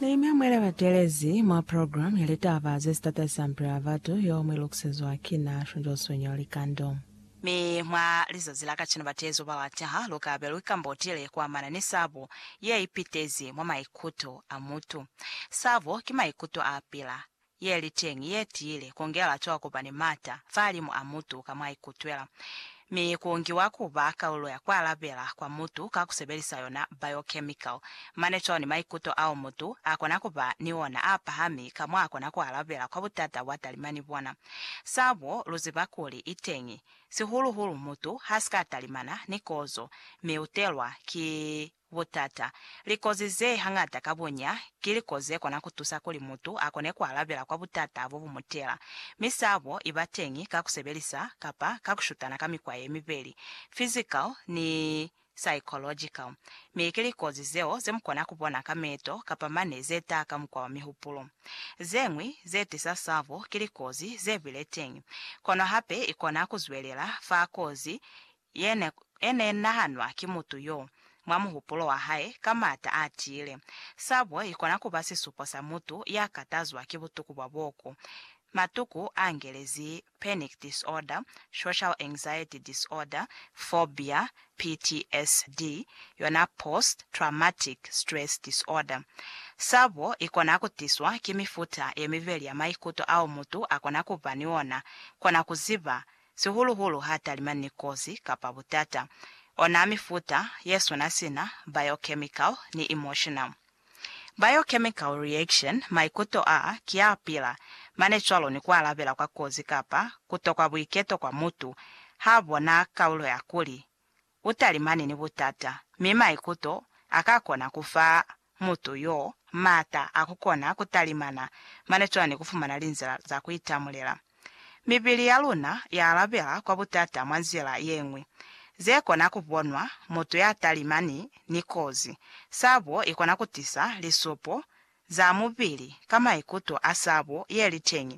Ne ni mwemwela batelezi mwa program ya litaba ze si tatahisa mipilo ya batu yeo mwi lukusezwa ki na, Shunjoswe Nyau Likando. Mi mwa lizazi la kacenu bateezi ba lwa taha lu ka be lu ikambotile ku amana ni sabo ye ipitezi mwa maikuto a mutu. Sabo ki maikuto a pila, ye li teñi, ye tiile, ku ngela cwa ku ba ni m'ata fahalimu a mutu ka mwa ikutwela, mi ku ngiwa ku ba kalulo ya ku alabela kwa mutu ka ku sebelisa yona biochemical, mane cwalo ni maikuto ao mutu a kona ku ba ni ona a pahami ka mwa kona ku alabela kwa butata bwa talima ni bona. Sabo, lu ziba kuli i teñi, sihulu-hulu mutu ha si ka talimana ni kozo, mi u telwa ki Butata, Likozi ze hañata ka bunya ki likozi ze kona ku tusa kuli mutu a kone ku alabela kwa butata bo bu mu tela. Mi sabo i ba teñi ka ku sebelisa kapa ka ku shutana ka mikwa ye mibeli, physical ni psychological, mi ki likozi zeo ze mu kona ku bona ka meto kapa mane ze taha ka mukwa wa mihupulo. Ze ñwi ze tisa sabo ki likozi ze bile teñi, kono hape i kona ku zwelela fa kozi ye ne e ne nahanwa ki mutu yo, mwa muhupulo wa hae, ka m'ata a tiile. Sabo i kona ku ba sisupo sa mutu ya katazwa ki butuku bwa boku. Matuku a ngelezi panic disorder, social anxiety disorder, phobia, PTSD, yona post traumatic stress disorder. Sabo i kona ku tiswa ki mifuta ye mibeli ya maikuto ao mutu a kona ku ba ni ona, kona ku ziba sihulu-hulu ha talima ni kozi kapa butata. Ona mifuta ye swana sina, biochemical ni emotional. Biochemical reaction, maikuto a ki a pila, mane cwalo ni ku alabela kwa kozi kapa kutokwa buiketo kwa mutu ha bona kaulo ya kuli u talimani ni butata, mi maikuto a ka kona ku fa mutu yo m'ata a ku kona ku talimana mane cwana ni ku fumana linzila za ku itamulela. Mibili ya luna ya alabela kwa butata mwa nzila ye ñwi ze kona ku bonwa. Mutu ya talimani ni kozi, sabo i kona ku tisa lisupo za mubili ka maikuto a sabo ye li teñi.